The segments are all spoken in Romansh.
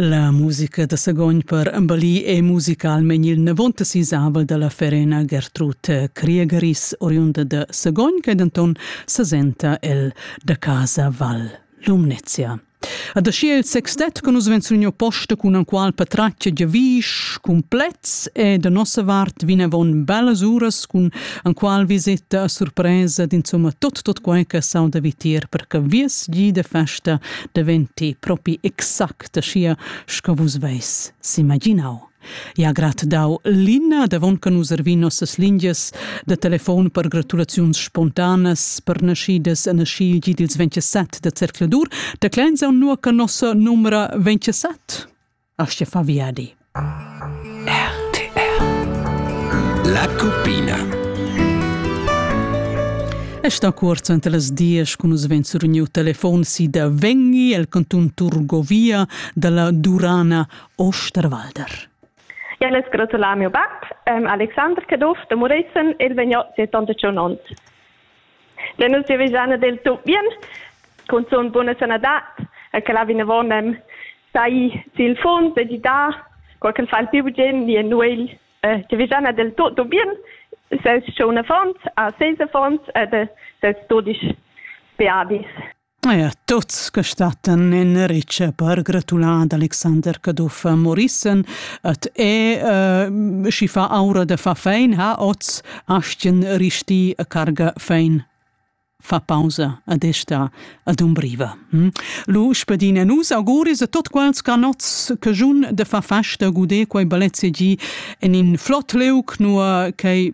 La musica da Sagogn per Ambali è musicalmein il navonta sisavel dalla ferena Gertrud Kriegeris, oriunda da Sagogn, che denton sesenta el da casa Val Lumnezia. Ad aschi il sextet con nus venzuno posta cun al qual patraccia giavisch complets e da nossa vart vinavon bellas uras cun Anqual visita a surpresa d'insumma tot tot quai che sauda vitier per che vies gi de festa deventi propi exact sia sco vus veis s'imaginau. Ja grat dau Lina davon che nus ervin nossas lingias da telefon per gratulaziuns spontanas per naschidas e nascigi dils 27 de Cercladur, da clenza un nuo che nossa numera 27? Aschia fa viadi. RTR La Cuppina è sta cuorzo ante las dies cun nus ven suruniu telefon si da Vengi el cantun Turgovia dalla Durana Osterwalder. Ja, les gratular mio bab, um, Alexander Caduff de Murezen, il vegno 71 onns. Ne nus giavischan ad el tut bien, cunzun buna sanadad, e che la vinavon nem sai sil funs e gidar, qual che fa il più bugen ni en nuegl, eh, giavischan ad el tutto bien, ses schon affons, a ses affons ed ses dudisch beadis. Eir tuots che stattan in ritscha per gratular ad Alexander Caduff Morissen et e uh, schi fa aura de fa fein ha oz astien risti a carga fein fa pausa ad esta ad umbriva. Hm? Lu spedine nus auguris a tot quels canots che giun de fa festa gude quei balezze gi en in flott leuc nur che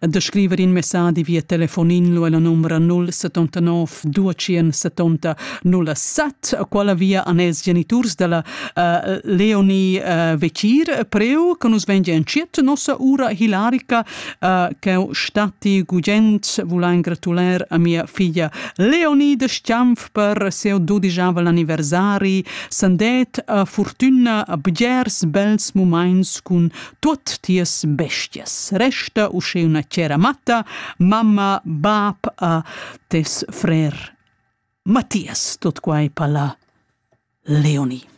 da scriver in messadi via telefonin lu ella numera 079 270 07 quella via an els geniturs della uh, Leonie uh, Vecir preu che nus vengi enciet nossa ura hilarica uh, che stati gugent vulein gratuler a mia figlia Leonie de Stiamf per seu dodigiavel anniversari sandet a fortuna a bgers bels moments cun Tuot tias bestias. Resta usche una cera matta, mamma, bab a tes frer. Mattias, tot quai palla Leonie.